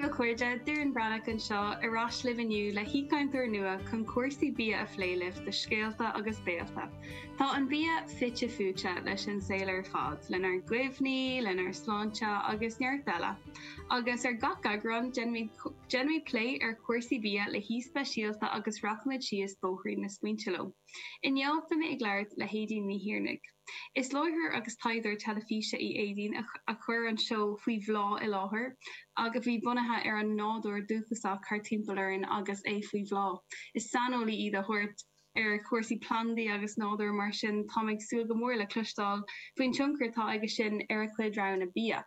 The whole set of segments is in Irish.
Aoibh, a chairde! Doireann Breathnach anseo, ar ais libh inniu le haoichainteoir nua chun cúrsaí bia a phlé libh do Scéalta agus Béalta. Tá an bia fite fuaite leis an saol ar fad, lenár gcuimhní, lenár sláinte agus neart eile. Agus ar gach eagrán, déanaimid plé ar chúrsaí bia le haoi speisialta agus rachaimid síos bóithrín na smaointe leo. Inniu, beimid ag labhairt le hAedín Ní Thiarnaigh. Is láithreoir agus taighdeoir teilifíse í Aedín a chuir an seó Faoi Bhláth i láthair, a bhí bunaithe ar an nádúr dúchasach thart timpeall orainn agus é faoi bhláth. Is saineolaí í de shórt ar chúrsaí plandaí agus nádúir, mar sin táim ag súil go mór le cloisteáil faoin tionchar atá aige sin ar a cuid roghanna bia.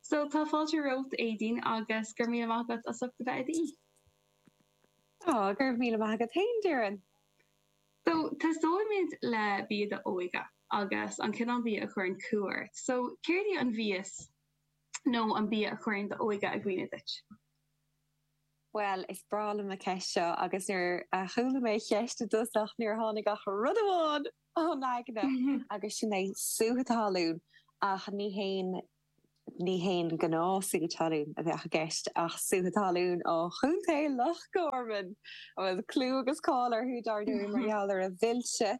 So, tá fáilte romhat, Aedín, agus go raibh míle maith agat as ucht a bheith i d'aoi. Go raibh míle maith agat féin, a Dhoireann. So, tosóimid le bia d'óige agus an cineál bia a chuireann cumha ort. So, céard í an mhias nó an bia a chuireann d'óige i gcuimhne duit? Bhuel, is breá liom an cheist seo agus nuair a chuala mé an cheist i dtosach níor tháinig ach rud amháin chun aigne agus sin é sútha talún ach ní haon Ní haon ghnáth-shútha talún a bheadh i gceist ach sútha talún ó Chontae Loch Gorman a bhfuil clú agus cáil orthu, dar ndóigh, mar gheall ar a mhilse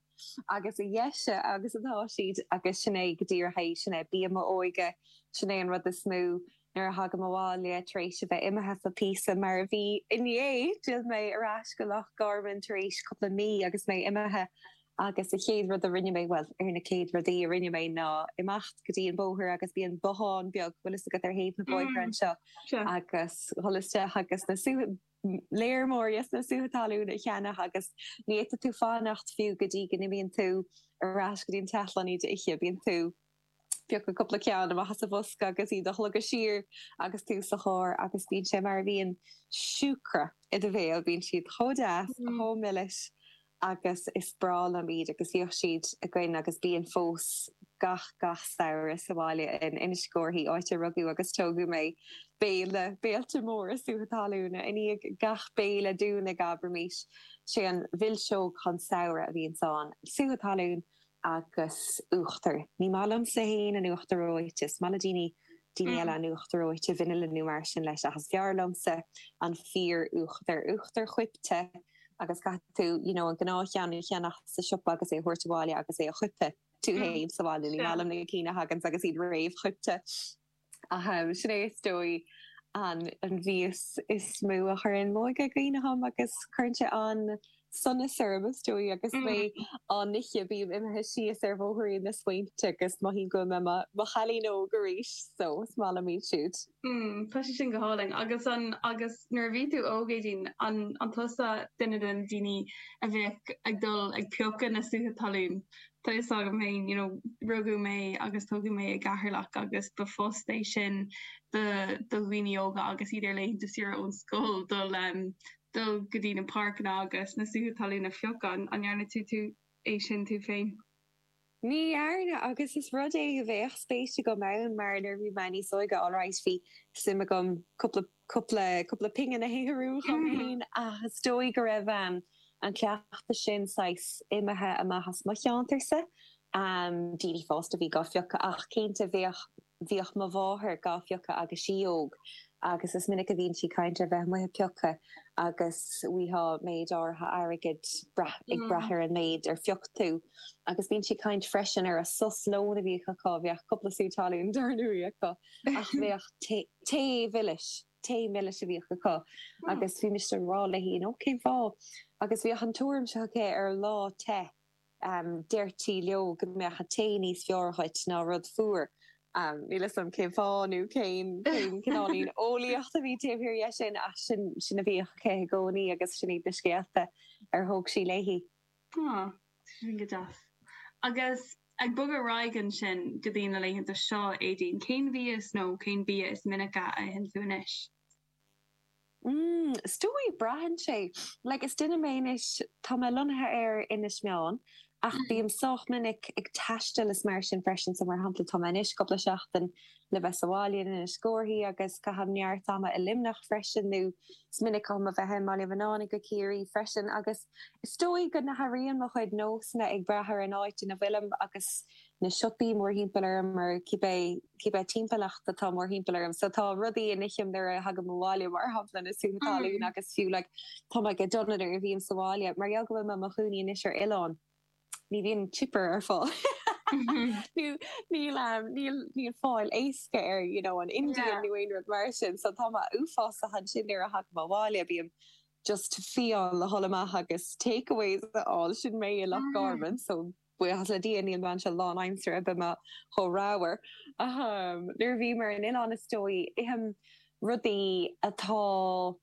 agus a dheise agus atá siad. Agus sin é go díreach é. Sin é bia m'óige. Sin é an rud is mó, nuair a thagaim abhaile tar éis a bheith imithe ar feadh píosa, mar a bhí inné, d'fhill mé ar ais go Loch Gorman tar éis cúpla mí agus mé imithe, Agus an chéad rud a rinne mé, bhuel, ar na céad rudaí a rinne mé, ná imeacht go dtí an bóthar agus bíonn bothán beag, bhfuil fhios agat, ar thaobh na bóithre anseo, agus dhul isteach agus na, léir mór, yes, na sútha talún a cheannach agus ní fhéadfadh tú fanacht fiú go dtí go n-imíonn tú ar ais go dtí an teach le hiad a ithe, bíonn tú. ag piocadh cúpla ceann amach as an mbosca agus iad a shlogadh siar agus tú sa charr agus bíonn sé mar a bhíonn siúcra i do bhéal, bíonn siad chomh deas, chomh milis agus is breá liom iad agus bhíodh siad againn agus bíonn fós gach, gach samhradh sa bhaile in Inis Córthaidh, áit a rugadh agus tógadh mé. Béile, béilí móra sútha talúna. I ndiaidh gach béile dúinn, abraimis, sé an mhilseog chinn samhraidh a bhíonns ann. Sútha talún agus uachtar. Ní maith liomsa fhéin an t-uachtar reoite. Is maith le daoine, daoine eile an t-uachtar reoite, vanilla nó mar sin leis ach is fearr liomsa an fíoruachtar. Uachtar coipthe agus caithfidh tú you know an gnáthcheann a cheannach sa siopa agus é a thabhairt abhaile agus é a choipeadh tú fhéin sa bhaile. Ní maith liom na cinn a thaganns agus iad réamhchoipthe. Ahem, sin é is dóigh an mhias is mó a chuireann m'óige i gcuimhne dhom agus cuireann sé an-sonas orm, is dóigh, agus mé á n-ithe, bím imithe síos ar bhóithrín na smaointe agus mothaím go bhfuil mé i mo chailín óg arís, so is maith liom iad siúd. Tá sé sin go hálainn. Agus an, agus nuair a bhí tú óg, Aedín, an, an tusa duine de na daoine a bheadh ag dul ag piocadh na sútha talún? Tá fhios agam féin, you know, rugadh mé agus tógadh mé i gCeatharlach agus ba phost é sin do do dhaoine óga agus iad ar laethanta saoire ón scoil dul em dul go dtí na páirceanna agus na sútha talún a phiocadh. An ndearna tú tú é sin tú féin? Ní dhearna agus is rud é a bheadh spéis agam ann mar nuair a bhí mé níos óige alright bhí suim a'm cúpla cúpla, cúpla pingin a shaothrú dhom fhéin ach is dóigh go raibh an cleachtadh sin saghas imithe amach as mo cheantar-sa. Daoine fásta a bhí gá phiocadh ach cinnte bhíodh, bhíodh mo mháthair gá phiocadh agus í óg agus is minic a bhíonn sí ag caint ar bheith amuigh ag piocadh agus bhíodh méid áirithe airgid braith, ag braith ar an méid ar phioc tú agus bíonn sí ag caint freisin ar a sos lóin a bhíodh acu, bhíodh cúpla sú talún dar ndóigh acu ach bhíodh tae, Tae milis, tae milis a bhíodh acu agus bhí mise ag rá léi, you know, cén fáth? Agus bhíodh an tuairim seo aici, ar lá te, deirtí leo go mbeadh an tae níos fearr dhuit ná rud fuar. Níl 'fhios a'm cén fáth nó cén cineáilín eolaíochta a bhí taobh thiar dhe sin ach sin, sin a bhíodh aici i gcónaí agus sin iad na scéalta ar thóg sí léi. Sin go deas. Agus ag bogadh ar aghaidh ansin go dtí na laethanta seo, Aedín, cén mhias nó cén bia is minice a itheann tú anois? Is dóigh, braitheann sé. Like, is duine mé anois, tá mé lonnaithe ar Inis Meáin ach bím sách minic ag taisteal is mar sin freisin. So, mar shampla, tá mé anois cúpla seachtain le bheith sa bhaile in Inis Górthaidh agus caithim neart ama i Luimneach freisin nó is minic dhom a bheith i mBaile Mhannáin i gCo Ciarraí freisin agus, Is dóigh go n-athraíonn mo chuid nósanna ag brath ar an áit ina bhfuilim agus na siopaí mórthimpeall orm or cibé, cibé timpeallacht atá mórthimpeall orm. So tá rudaí a n-ithim nuair a thagaim abhaile, mar shampla, na sútha talún agus fiú like tá mé go dona nuair a bhím sa bhaile. Mar gheall go bhfuil mé i mo chónaí anois ar oileán, ní bhíonn chipper ar fáil. Níl fáil éasca air, you know, an Indian nó aon rud mar sin. So tá mé uafásach ansin nuair a thagaim abhaile, bím, just fiáin le dhul amach agus takeaways a fháil, sin mé i Loch Garman so buíochas le Dia níl mé anseo lánaimseartha bheadh mé chomh ramhar, ahem. Nuair a bhím ar an oileán is dóigh ithim rudaí atá,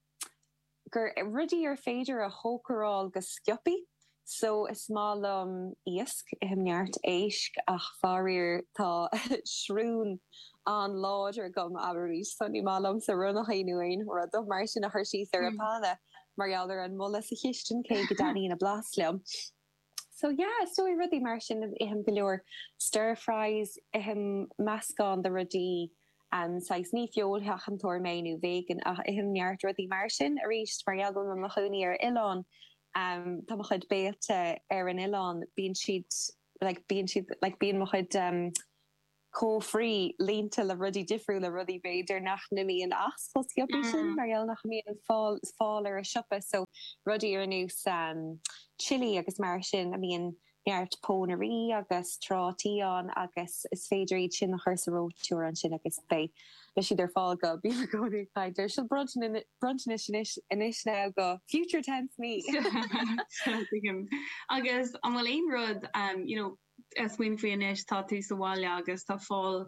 gur, rudaí ar féidir a chócaráil go sciopaí. Só, is maith liom iasc, ithim neart éisc, ach faraor tá srón an-láidir agam, abraimis, só ní maith liomsa ronnachaí nó aon rud mar sin a chur síos ar an bpána mar gheall ar an mboladh sa chistin, cé go dtaitníonn a blas liom. Só, yeah, is dóigh rudaí mar sin, ithim go leor stir fries, ithim meascán de rudaí, saghas, ní feoilsheachantóir mé nó vegan ach ithim neart rudaí mar sin, arís mar gheall go bhfuil mé i mo chónaí ar oileán, Tá mo chuid béilte ar an oileán, bíonn siad, like, bíonn siad, like, bíonn mo chuid cófraí líonta le rudaí difriúla, rudaí b'fhéidir nach n-imíonn as chomh sciobtha sin mar gheall nach mbíonn fáil, fáil ar an siopa. So, rudaí ar nós chili agus mar sin a mbíonn neart pónairí agus trátaí ann agus is féidir iad sin a chur sa reoiteoir ansin agus beidh siad ar fáil go, bím i gcónaí ag caint ar sin, bronntanais anois now do future tense me! Tuigim. Agus an bhfuil aon rud you know ag smaoineamh faoi anois tá tú sa bhaile agus tá fáil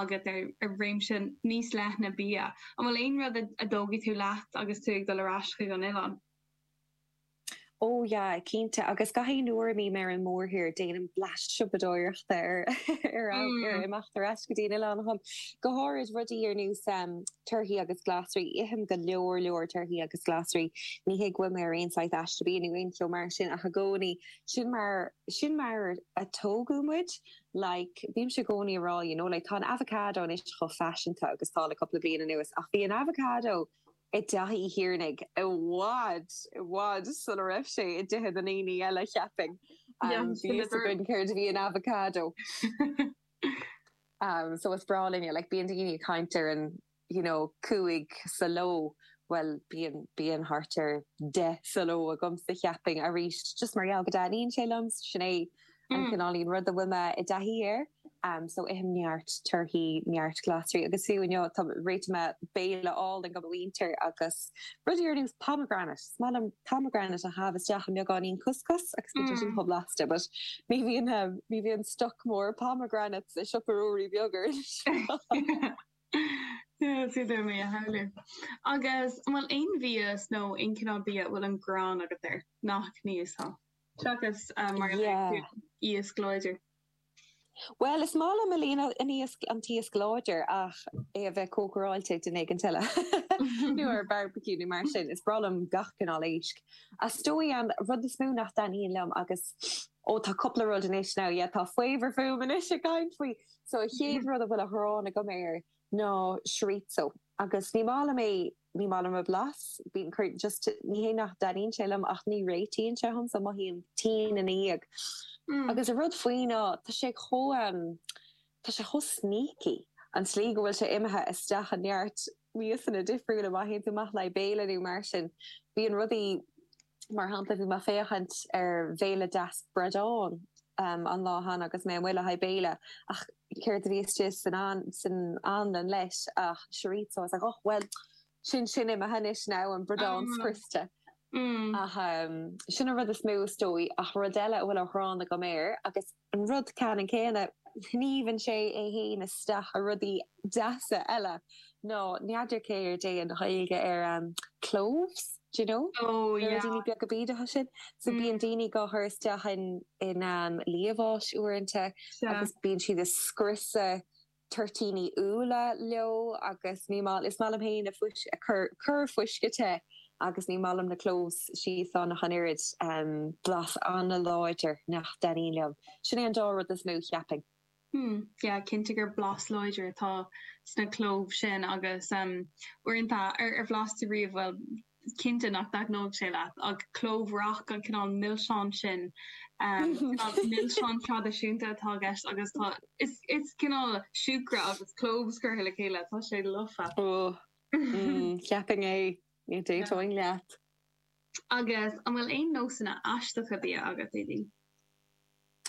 agat ar réimse níos leithne bia, an bhfuil aon rud a dtógfaidh tú leat agus tú ag dul ar ais chuig an oileán? Ó, yeah, cinnte, agus gach aon uair a mbím ar an mórthír, déanaim bleaist siopadóireachta roimh imeacht ar ais go dtí an oileán dom. Go háirid, rudaí ar nós torthaí agus glasraí. Ithim go leor leor torthaí agus glasraí. Ní hé go bhfuilim ar aon saghas aiste bia nó aon cheo mar sin ach i gcónaí, sin mar, sin mar a tógadh muid. Like, bímse i gcónaí ag rá, you know, like, tá an avocado anois chomh faiseanta agus tá le cúpla bliain anuas ach bhí an avocado, i dTeach Uí Thiarnaigh i bhfad, i bhfad sula raibh sé i dtithe na ndaoine eile, cheapfainn. Bhí a fhios againn céard a bhí in avocado. So is breá linne, like, bíonn daoine ag caint ar an, you know, cúig sa ló, bhuel, bíonn, bíonn thart ar deich sa ló agamsa, cheapfainn, arís, just mar gheall go dtaitníonn sé liom, sin é. an cineáilín rud a bhfuil mé i dtaithí air, so ithim neart torthaí, neart glasraí, agus fiú inniu tá, réitigh mé béile álainn do mo mhuintir agus rudaí ar nós pomegranate, is maith liom pomegranate a chaitheamh isteach i mbeagáinín couscous, agus bíonn sé sin chomh blasta, but ní bhíonn, ní bhíonn stoc mór pomegranates i Siopa Ruairí Beag anois. Is féidir liom a shamhlú. Agus an bhfuil aon bhia, nó aon chineál bia a bhfuil an ghráin agat air, nach n-íosfá? Seachas mar a deir tú iasc láidir. Bhuel, is maith liom a líon an iasc, an t-iasc láidir, ach é a bheith cócaráilte ag duine éigint eile. Nó ar barbecue nó mar sin. Is breá liom gach cineál éisc. Is dóigh an rud is mó nach dtaitníonn liom agus, ó tá cúpla rud anois, now yeah, tá faobhar fúm anois ag caint faoi! So an chéad rud a bhfuil an ghráin agam air ná chorizo. Agus ní maith liom é. Ní maith liom a blas. Bíonn, just, ní hé nach dtaitníonn sé liom ach ní réitíonn sé dhom so mothaím tinn ina dhiaidh. Agus an rud faoi ná tá sé chomh, em, tá sé chomh sneaky, an tslí go bhfuil sé imithe isteach i neart miasanna difriúla. Má théann tú amach le haghaidh béile nó mar sin, bíonn rudaí. Mar shampla, bhí mé ag féachaint ar bhéile deas bradáin an lá cheana agus mé amuigh le haghaidh béile, ach céard a bhí istigh san anlann leis ach chorizo. Is ea, och, bhuel, sin sin imithe anois now, an bradán scriosta. Ach sin an rud is mó, is dóigh, ach rud eile a bhfuil an ghráin agam air, agus, An rud ceannann céanna, sníomhann sé é fhéin isteach i rudaí deasa eile, ná n'fheadar céard é an Ghaeilge ar cloves, d'you know? Na ruidíní beaga bídeacha sin. So bíonn daoine dhá chur isteach i liamhás uaireanta agus bíonn siad ag scriosadh. toirtíní úlla leo agus ní maith, is maith liom féin fuisce, ag cur, cur fuisce te agus ní maith liom na cloves thíos ann ach an oiread, blas an-láidir nach dtaitníonn liom. Sin é an dá rud is mó, cheapfainn. Hmm, yeah, cinnte gur blas láidir atá sna cloves sin agus uaireanta, ar bhlais tú riamh, bhuel, is cinnte nach dtaitneodh sé leat, ach clove rock, an cineál milseáin sin, cineál milseán traidisiúnta atá i gceist agus tá, is cineál siúcra agus cloves curtha le chéile, tá sé lofa. Óóó, cheapfainn é, d'aontóinn leat. Agus an bhfuil aon nósanna aisteacha bia agat, Aedín?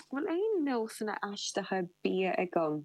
An bhfuil aon nósanna aisteacha bia agam?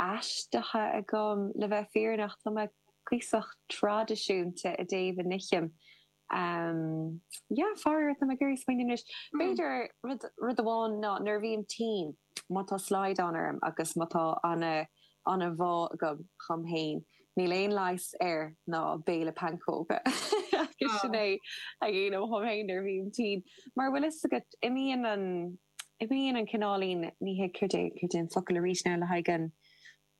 aisteacha agam, le bheith fírinneach. Tá mé cuíosach traidisiúnta i dtaobh a n-ithim. Yeah, faraor, tá mé ag iarraidh smaoineamh anois. B'fhéidir, rud, rud amháin ná nuair a bhím tinn, má tá slaghdán orm agus má tá an-, an-bhá agam dhom fhéin, níl aon leigheas air ná béile pancóga. Agus sin é a dhéanaim dhom fhéin nuair a bhím tinn. Mar an bhfuil fhios agat, imíonn an. Imíonn an cineál fonn ithe, céard é an focal arís ná le haghaidh an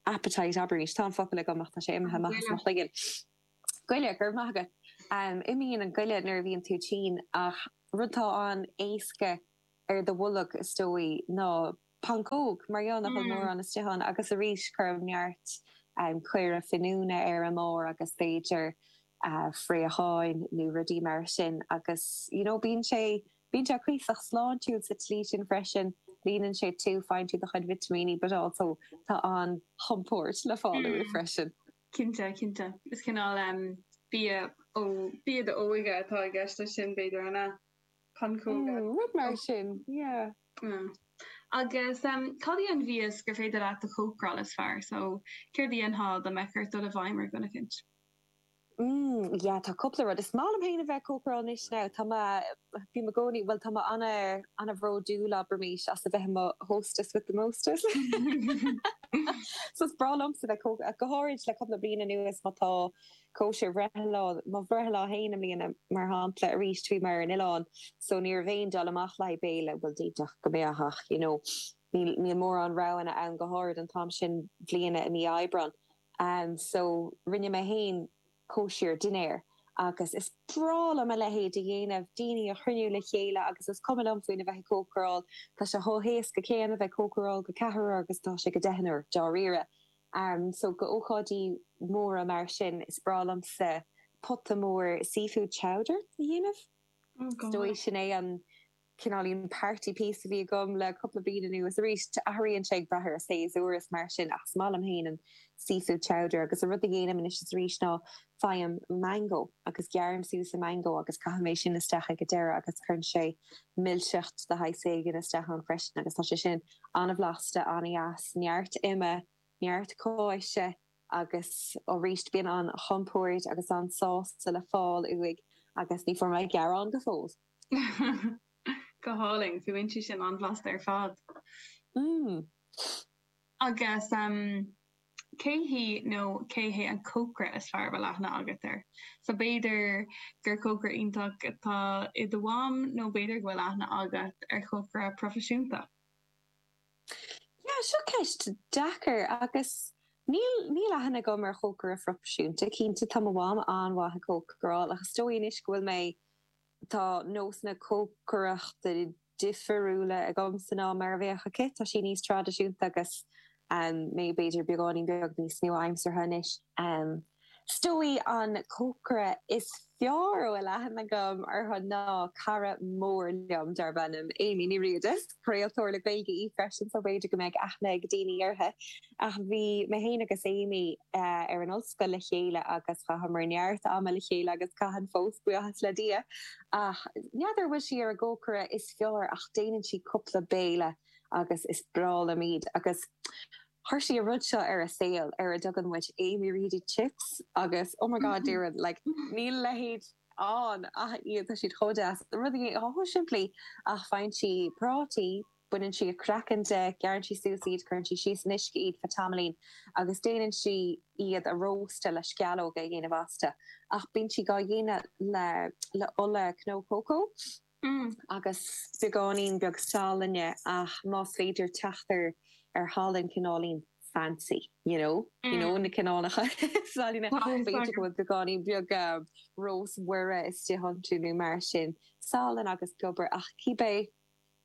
appetite arís. Tá an focal agam ach tá sé imithe amach as mo chloigeann. Goile, go raibh maith agat. Imíonn an goile nuair a bhíonn tú tinn, ach rud atá an-éasca ar do bholg, is dóigh, ná pancóg, mar níl a dhath mórán istigh ann, agus arís cuirim neart caora finiúna air ámh agus b'fhéidir fraocháin nó rudaí mar sin agus, you know, bíonn sé Bíonn sé cuíosach sláintiúil sa tslí sin freisin, líonann sé tú, faigheann tú do chuid vitimíní but also tá an-chompord le fáil uaidh freisin. Cinnte, cinnte. Is cineál bia ó bhia d'óige atá i gceist leis sin, b'fhéidir, an ea? Pancóga? Mm, rud mar sin, yeah. Mm. Agus cad é an mhias gur féidir leat a chócaráil is fearr? So céard a dhéanfá dá mbeadh ort dul i bhfeidhm ar dhuine eicint? Mm, yeah, tá cúpla rud. Is maith liom féin a bheith ag cócaráil anois now. Tá mé, bím i gcónaí, bhuel, tá mé ana, ana bhródúil, abraimis, as a bheith i mo hostess with the mostest. So is breá liomsa bheith có, go háirid le cúpla bliain anuas má tá cóisir, mo bhreithlá, mo bhreithlá féin i mbliana, mar shampla, aríst bhí mé ar an oileán so ní raibh aon dul amach le haghaidh béile, bhuel, d'fhéadfadh go mbeadh ach, you know, níl, níl mórán roghanna ann, go háirid an t-am sin bliana i mí Aibreán. and so rinne mé féin cóisir dinnéir agus is breá liom a leithéid a dhéanamh, daoine a chruinniú le chéile agus is cuma liom faoina bheith ag cócaráil, tá sé chomh héasca céanna bheith ag cócaráil go ceathrar agus atá sé go deichniúr, dáiríre. So go ócáidí móra mar sin, is breá liomsa pota mór seafood chowder a dhéanamh, is dóigh, sin é an. cineáilín party piece a bhí agam le cúpla bliain anuas. Arís, athraíonn sé ag brath ar an séasúr is mar sin ach is maith liom féin an seafood chowder agus an rud a dhéanaim anois is arís ná faighim mango agus gearraim suas an mango agus caithim é sin isteach ag an deireadh agus cuireann sé milseacht de shaghas éigin isteach ann freisin agus tá sé sin an-bhlasta, an-deas, neart ime, neart cáise agus arís bíonn an-chompord agus an-sásamh le fáil uaidh agus ní fuair mé gearán go fóill! Go hálainn. Fuaimníonn sé sin an-bhlasta ar fad. Agus cé hí nó cé hé an cócaire is fearr a bhfuil aithne agat air? So b'fhéidir gur cócaire iontach atá i do mham nó b'fhéidir go bhfuil aithne agat ar chócaire proifisiúnta. Yeah, seo ceist deacair agus níl, níl aithne agam ar chócaire proifisiúnta. Cinnte tá mo mham an-mhaith ag cócaráil ach is dóigh anois go bhfuil mé Tá nósanna cócaireachta difiriúla agamsa ná mar a bheadh aici. Tá sí níos traidisiúnta agus mé b'fhéidir beagáinín beag níos nua-aimseartha anois. Is dóigh an cócaire is fearr a bhfuil aithne agam orthu ná cara mór liom darb ainm Amy Ní Riada. Is craoltóir le Gaeilge í freisin so b'fhéidir go mbeidh aithne ag daoine uirthi. Ach bhí mé féin agus Amy ar an ollscoil le chéile agus chaitheamar neart ama le chéile agus caitheann fós, buíochas le Dia. Ach n'fheadar an bhfuil sí ar an gcócaire is fearr ach déanann sí cúpla béile agus is breá liom iad. Agus chuir sí an rud seo ar an saol ar a dtugann muid Amy Reedy Chips agus oh my god déarfainn like níl a leithéid ann ach iad, tá siad chomh deas. Rudaí chomh simplí ach faigheann sí prátaí, Baineann sí a craiceann de, gearrann sí suas iad, cuireann sí síos in uisce iad faoi tamaillín agus déanann sí iad a róstadh le sceallóga a dhéanamh astu. Ach bíonn sí gá dhéanamh le le ola cnó cócó agus beagáinín beag salainne ach más féidir teacht ar ar shalann cineáilín fancy you know you know na cineálacha salainne b'fhéidir go bhfuil beagáinín beag Rós Mhuire istigh iontu nó mar sin. Salann agus piobar ach cibé.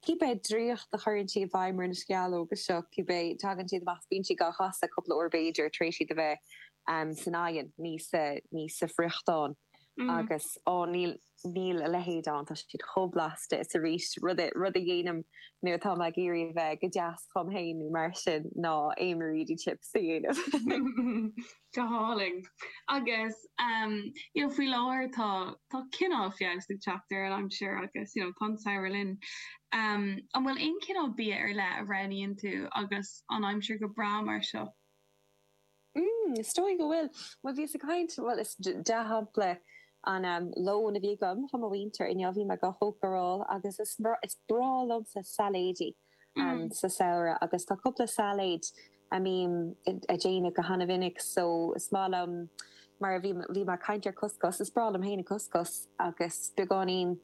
Cibé draíocht a chuireann sí i bhfeidhm ar na sceallóga seo, cibé, tagann siad amach, bíonn sí gá chasadh cúpla uair b'fhéidir, tar éis iad a bheith san oigheann, ní sa friochtán, agus á, níl a leithéid ann, tá siad chomh blasta. Is arís, rud a dhéanaim nuair atá mé ag iarraidh a bheith go deas chugam féin nó mar sin, ná aon Mareedy chips a dhéanamh. Go hálainn. Agus you know faoi láthair tá tá cineál feabhas ag teacht ar an aimsir agus you know tá an samhradh linn. An bhfuil aon chineál bia ar leith a roghnaíonn tú agus an aimsir go breá mar seo? Mmm is dóigh go bhfuil. Bhuel bhíos ag caint, bhuel is dea-shampla an lón a bhí agam le mo mhuintir inniu, bhí mé go hócáideach agus is breá liomsa sailéidí. sa samhradh agus tá cúpla sailéid a bhím a' déanamh go hana-mhinic so is maith liom, mar a bhí, bhí mé a' caint ar couscous, is breá liom fhéin an couscous agus beagáinín,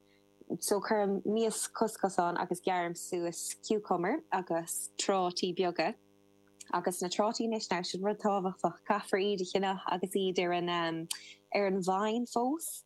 so cuirim mias couscous ann agus gearraim suas cucumber agus trátaí beaga agus na trátaí anois now, sin rud tábhachtach, caithfear iad a cheannach agus iad ar an, ar an vine fós.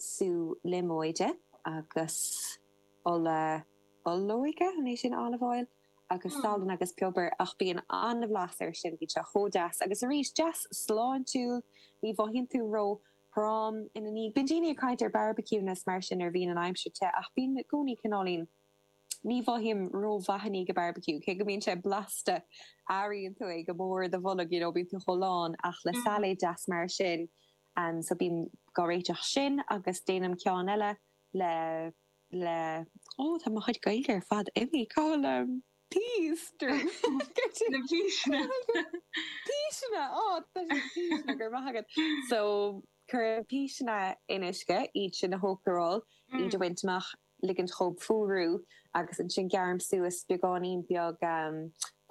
sú líomóide agus ola olóige, an é sin olive oil? agus salann agus piobar ach bíonn an-bhlas air sin, bíonn sé chomh deas agus arís, deas sláintiúil, ní mhothaíonn tú ró-throm ina dhiaidh. Bíonn daoine ag caint ar barbecuing is mar sin nuair a bhíonn an aimsir te ach bím i gcónaí cineáilín, ní mhothaím ró-mhaith i ndiaidh an barbecue cé go mbíonn sé blasta, airíonn tú é go mór i do bholg, you know, bíonn tú chomh lán ach le sailéad deas mar sin, Ann so bím gá réiteach sin agus déanaim ceann eile le le ó tá mo chuid gaeilge ar fad imigh cá bhfuil an peas duruim na píseanna píseanna ó tá sé píseanna go raibh maith agat so cuirim píseanna in uisce iad sin a chócaráil iad a bhaint amach. ligint dhóibh fuarú agus ansin gearraim suas beagáinín beag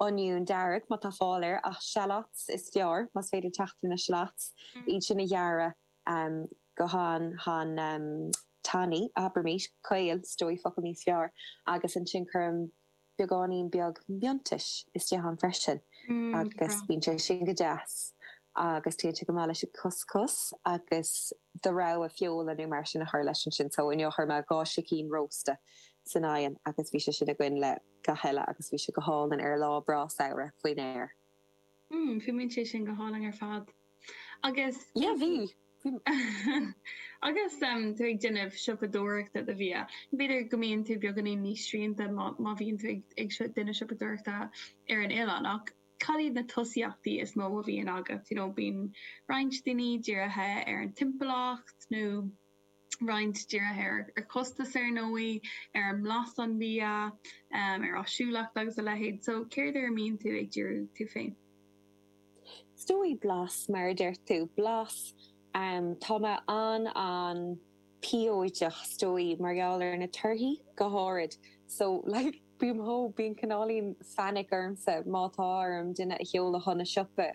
oinniún dearg má tá fáil air ach shallots is fearr más féidir teacht ar na shallots, iad sin a ghearradh go han, han tanaí, abraimís, caol, is dóigh focal níos fearr, agus ansin cuirim. beagáinín beag miontais istigh ann freisin agus bíonn sé sin go deas agus téann sé go maith leis an couscous agus do rogha feola nó mar sin a chur leis ansin. So inniu chuir mé dhá sicín rósta san oigheann agus bhí sé sin againn le gach eile agus bhí sé go hálainn ar lá breá samhraidh faoin aer. Mmm, fuaimníonn sé sin go hálainn ar fad. Agus. Yeah, bhí. Agus tú ag déanamh siopadóireachta do bhia, b'fhéidir go mbíonn tú beagáinín níos srianta má bhíonn tú ag déanamh siopadóireachta ar an oileán, ach cad iad na tosaíochtaí is mó a bhíonn agat, you know, bíonn roinnt daoine dírithe ar an timpeallacht nó. roinnt dírithe ar chostas ar ndóigh, ar bhlas an bhia, ar áisiúlacht agus a leithéid. So céard ar a mbíonn tú ag díriú tú féin? Is dóigh blas, mar a deir tú, blas. Tá mé an an-phiocach is dóigh mar gheall ar na torthaí go háirid. So like bím, tá, bíonn cineáilín phanic ormsa má tá orm duine a sheoladh chun an tsiopa.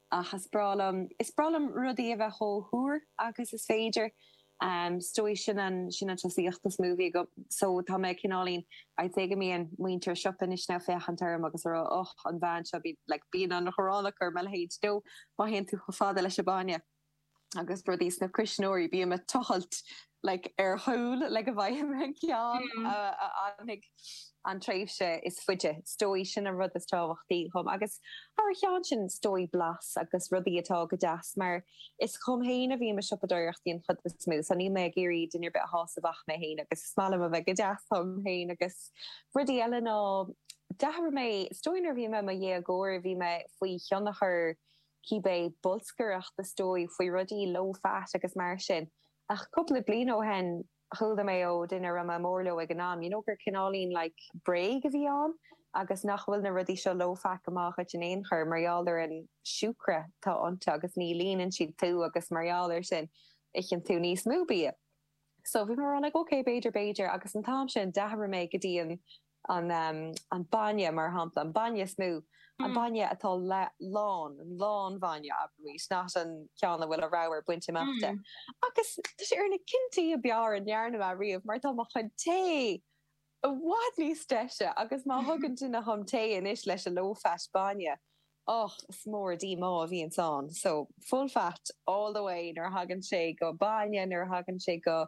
Ach is breá liom, is breá liom rudaí a bheith chomh húr agus is féidir. Is dóigh, sin an, sin an tosaíocht is mó a bheadh agam. So, tá mé cineáilín, I'd say go mbíonn muintir siopa anois ag féachaint orm agus ag rá, oh, an bhean seo, bíonn, like, bíonn an ghráin acu ar mo leithéid, no, má théann tú chomh fada leis an mbainne. agus rudaí sna cuisneoirí, bím ag tochailt like ar chúl le go bhfaighim an ceann a fhanfaidh an tréimhse is faide. Is dóigh sin an rud is tábhachtaí dhom, agus thar cheann sin, is dóigh blas agus rudaí atá go deas, mar is dhom féin a bhím ag siopadóireacht an chuid is mó, so níl mé ag iarraidh duine ar bith a shásamh ach mé féin, agus is maith liom a bheith go deas dhom féin. Agus rudaí eile ná, d'athraigh mé, is dóigh nuair a bhí mé i mo dhéagóir, bhí mé faoi thionchar cibé bolscaireacht is dóigh faoi rudaí, low fat agus mar sin. Ach cúpla bliain ó shin, chuala mé ó dhuine a raibh mé mór leo ag an am, you know, gur cineáilín, like, bréag a bhí ann agus nach bhfuil na rudaí seo low fat go maith dhuit in aon chor mar gheall ar an siúcra atá iontu agus ní líonann siad tú agus mar gheall ar sin, itheann tú níos mó bia. So, bhí mé mar a bheadh, like, okay, b'fhéidir, b'fhéidir. Agus an t-am sin, d'athraigh mé go dtí an. an bainne, mar shampla, an bainne is mó, an bainne atá lán, lán bhainne, abraimis, not an ceann a bhfuil an ramhar bainte amach de. Agus tá sé ar na cinntí ab fhearr a ndearna mé riamh, mar tá mo chuid tae i bhfad níos deise, agus má thugann duine dhom tae anois leis an low fat bainne, Ach is mór an díomá a bhíonns ann. So, full fat all the way nuair a thagann sé go bainne, nuair a thagann sé go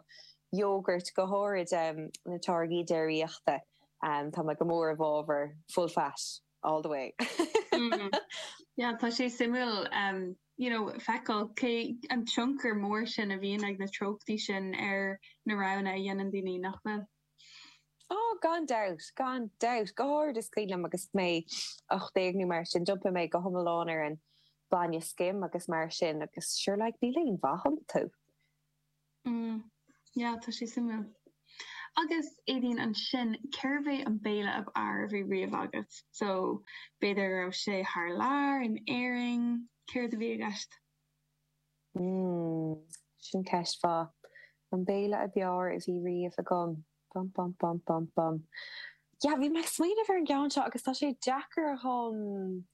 yogurt, go háirid na táirgí déiríochta. Tá mé go mór i bhfábhar full fat all the way. Yeah, tá sé suimiúil you know feiceáil cé an tionchar mór sin a bhíonn ag na treochtaí sin ar na roghanna a dhéanann daoine, nach bhfuil? Ó, gan dabht, gan dabht. Go háirid is cuimhin liom agus mé ocht déag nó mar sin, d'iompaigh mé go hiomlán ar an mbainne scim agus mar sin agus sure like níl aon mhaith iontu. Mm, yeah, tá sé suimiúil. Agus, Éadaoin, ansin, cérbh é an béile ab fhearr a bhí riamh agat? So, b'fhéidir go raibh sé thar lear, in Éirinn, céard a bhí i gceist? Hmm. Sin ceist mhaith. An béile ab fhearr a bhí riamh agam. Bum bum bum bum bum. Yeah, bhí mé ag smaoineamh ar an gceann seo agus tá sé deacair dhom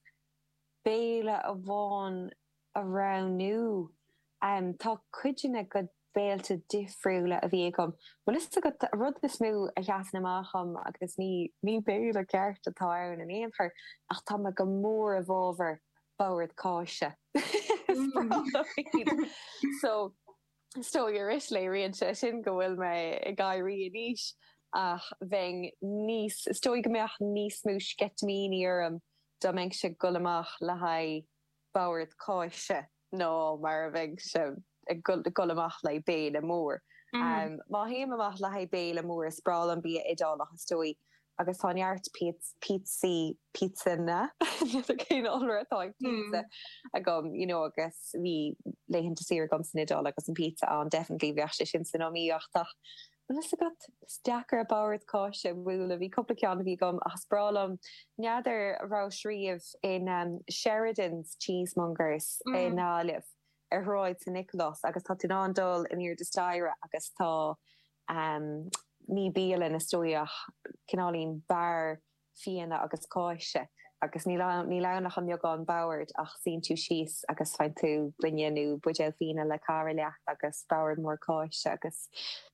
béile amháin a roghnú. Em, tá cuid de na béilte difriúla a bhí agam. Bhfuil fhios agat, an rud is mó a sheasann amach dhom, agus ní, ní béile ceart atá ann in aon chor, ach tá mé go mór i bhfábhar, bord cáise. So is dóigh arís, léiríonn sé sin go bhfuil mé ag éirí in aois ach bheinn níos, is dóigh go mbeadh níos mó sceitimíní orm dá mbeinnse ag dul amach le haghaidh bord cáise ná mar a bheinnse. ag dul amach le béile mór. Má théim amach le haghaidh béile mór, is breá liom bia Iodálach is dóigh, agus tá neart píotsaí, píotsanna, n'fheadar cén iolra atá ag pizza, agam, you know agus bhí laethanta saoire agam san Iodáil agus an pizza ann, definitely bheadh sé sin san iomaíocht ach tá a fhios agat, is deacair an bord cáise a bhualadh, bhí cúpla ceann a bhí agam ach is breá liom, n'fheadar, an rabhais riamh in Sheridans Cheesemongers i nGaillimh. ar Shráid San Nicholas agus tá tú in ann dul in airde staighre agus tá ehm ní bialann is dóigh ach cineáilín beár fíona agus cáise agus níl ann níl ann ach an-bheagán bord ach suíonn tú síos agus faigheann tú gloine nó buidéal fíona le cara leat agus bord mór cáise agus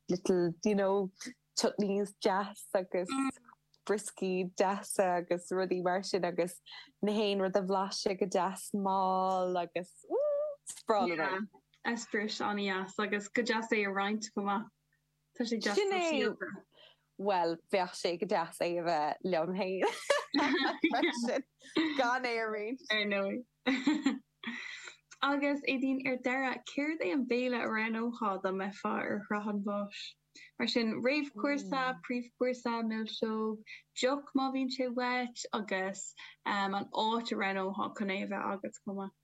little you know chutneys deas agus brioscaí deasa agus rudaí mar sin agus 'chaon rud a bhlaiseadh go deas mall agus ooh sprawl yeah. away. Eispéireas an-dheas agus go deas é a roinnt chomh maith. Tá sé deas sóisialta. Well, bheadh sé go deas é a bheith liom féin. Gan é a roinnt. Ar ndóigh. Agus Éadaoin, ar deireadh, céard é an béile a roghnófá dá mbeifeá ar shraith an bháis? Mar sin, réamhchúrsa, príomhchúrsa, milseog, deoch má bhíonn sé uait, agus an áit a roghnófá chun é a bheith agat chomh maith.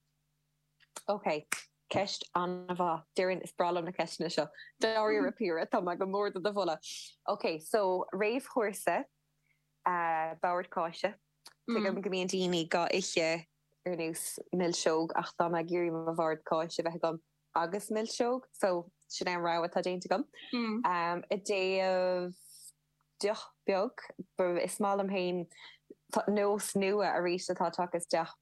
Ok, ceist an-mhaith. Deirim, is breá liom na ceisteanna seo. Dáiríre, Piara, tá mé go mór do do mholadh. Ok, so, réamhchúrsa, Bord Cáise, tuigim go mbíonn daoine dhá ithe ar nós milseog, ach tá mé ag iarraidh mo Bhord Cáise a bheith agam, agus milseog, so sin é an rogha atá déanta agam. I dtaobh deoch beag, is maith liom féin nós nua arís atá tagtha isteach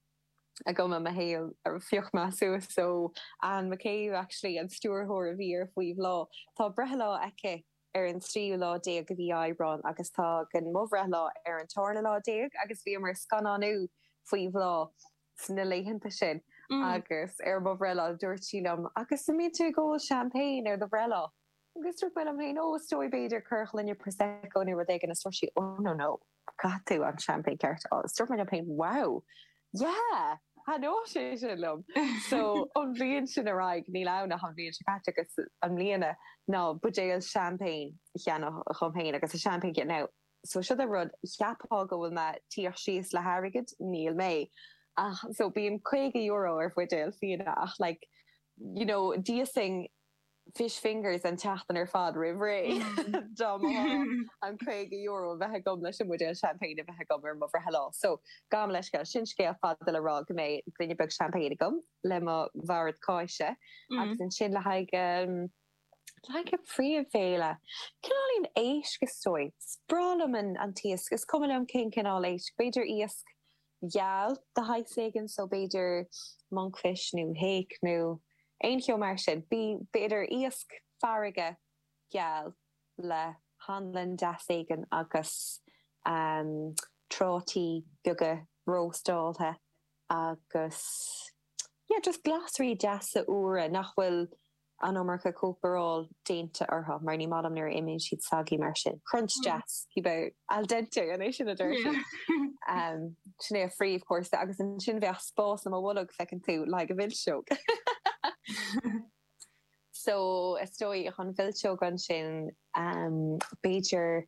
agam i mo shaol a phioc mé suas so Anne McCabe actually an stiúrthóir a bhí ar faoi bhláth tá breithlá aici ar an tríú lá déag de mhí Aibreáin agus tagann mo bhreithlá ar an tarna lá déag agus bhíomar ag scannánú faoi bhláth sna laethanta sin agus ar mo bhreithlá dúirt sí liom 'agus an mbíonn tú ag ól champagne ar do bhreithlá? Agus dúirt mé liom féin 'ó is dóigh b'fhéidir corrghloine Prosecco nó rud éigin' agus dúirt sí 'ó no no, caithfidh tú an champagne ceart a ól' agus dúirt mé liom féin 'wow, yeah, thaitneodh sé sin liom'. So ón bhliain sin ar aghaidh, níl ann ach an bhliain seo caite agus i mbliana, ná buidéal champagne a cheannach dhom féin agus a champagne a dhéanamh. so siod é an rud, cheapfá go bhfuil mé ag tíocht síos le hairgead, níl mé ach so bíonn caoga euro ar bhuidéal fíona ach like you know d'íosfainn fish fingers an tseachtain ar fad roimh ré dá mba ghá an caoga euro a bheith agam leis an mbuidéal champagne a bheith agam ar mo bhreithlá so gabhaim leithscéal, sin scéal fada le rá go mbeidh gloine beag champagne agam le mo bhord cáise agus ansin le haghaidh an príomhbhéile. Cineál éigin éisc is dóigh. Is breá liom an an t-iasc. Is cuma liom cén cineál éisc. B'fhéidir iasc geal de shaghas éigin so b'fhéidir monkfish nó hake nó aon cheo mar sin. B b'fhéidir iasc farraige geal le hanlann deas éigin agus ehm trátaí beaga róstáilte agus yeah just glasraí deasa úra nach bhfuil an iomarca cócaráil déanta orthu, mar ní maith liom nuair a imíonn siad soggy mar sin, crunch deas, cibé, al dente, an é sin a deir siad? Sin é an príomhchúrsa, agus ansin bheadh spás i mo bholg, feiceann tú, le haghaidh an mhilseog. So, is dóigh an mhilseog ansin, b'fhéidir,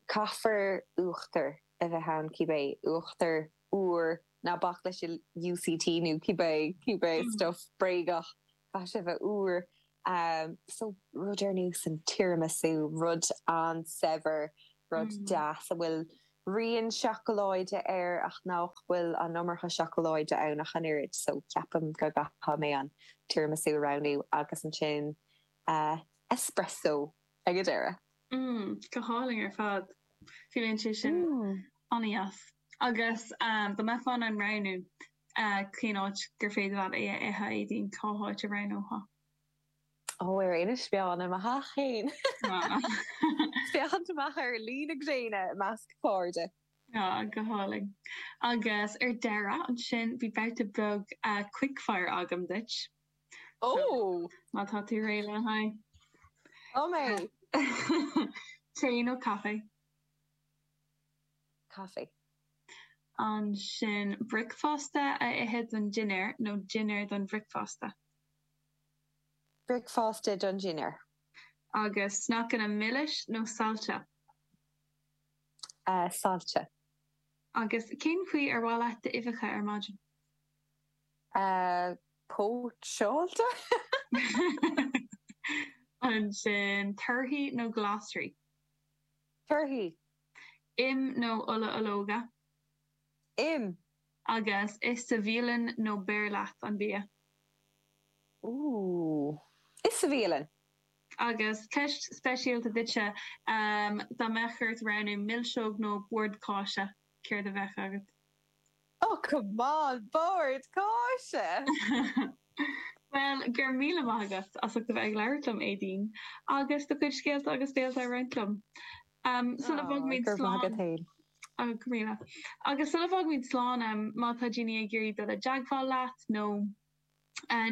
caithfear uachtar a bheith ann, cibé uachtar úr Ná bac leis an UHT nó cibé, cibé stuif bréagach, caithfidh sé a bheith úr. So, rud ar nós an tiramisu, rud an-saibhir, rud deas a bhfuil rian seacaláide air ach nach bhfuil an iomarca seacaláide ann ach an oiread. So, ceapaim go gcaithfidh mé an tiramisu a roghnú agus ansin espresso. ag an deireadh. mm go hálainn ar fad fuaimníonn sé sin an-dheas agus dá mbeifeá in ann roghnú cén áit gur féidir leat é a ithe Aedín cá háit a roghnófá? ó ar Inis Meáin i mo theach féin féachaint amach ar luí na gréine i measc cairde. ah go hálainn agus ar deireadh ansin bhí babhta beag quick fire agam duit. Oh! Má tá tú réidh lena aghaidh. Tá mé! Tae nó caife? Caife. Ansin, bricfeasta a ithe don dinnéar nó dinnéar don bhricfeasta? Bricfeasta don dinnéar. Agus sneaiceanna milis nó sailte? Sailte. Agus cén chaoi ar mhaith leat d'uibheacha ar maidin? póitseáilte. Ansin, torthaí nó glasraí? Torthaí. Im nó ola ológa? Im. Agus ithe sa bhialann nó beir leat an bia? Ooh. Ithe sa bhialann. Agus ceist speisialta duitse, dá mbeadh ort roghnú milseog nó bord cáise, céard a bheadh agat? Oh come on, bord cáise! Bhuel, go raibh míle maith agat as ucht a bheith ag labhairt liom, Aedín, agus do chuid scéalta agus d'eolas a roinnt liom. Sula bhfágfaimid slán, go míle, agus sula bhfágfaimid slán, má tá daoine ag iarraidh dul i dteagmháil leat nó,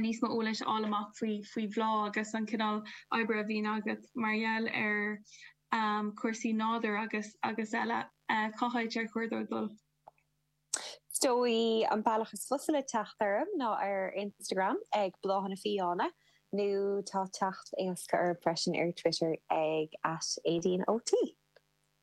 níos mó eolais a fháil amach faoi faoi bhláth agus an cineál oibre a bhíonn agat mar gheall ar chúrsaí nádúir agus agus eile. Cá háit ar chóir dóibh dul? Is dóigh an bealach is fusa le teacht orm ná ar Instagram ag Bláthanna Fiáine nó tá teacht éasca orm freisin ar Twitter ag at Aedín O T.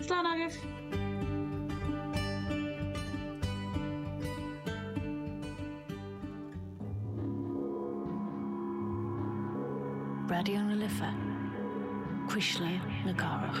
Slán agaibh! Raidió na Life, Cuisle na Cathrach.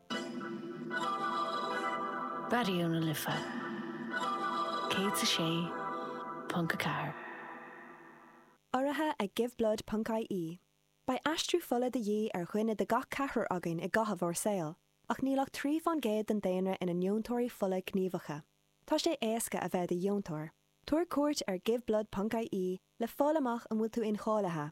Raidió na Life 106.4. Urraithe ag Give Blood ponc IE, beidh aistriú fola de dhíth ar dhuine de gach ceathrar againn i gcaitheamh ár saoil, ach níl ach trí fán gcéad den daonra ina ndeontóirí fola gníomhacha. Tá sé éasca a bheith i do dheontóir. Tabhair cuairt ar Give Blood ponc IE le fáil amach an bhfuil tú incháilithe.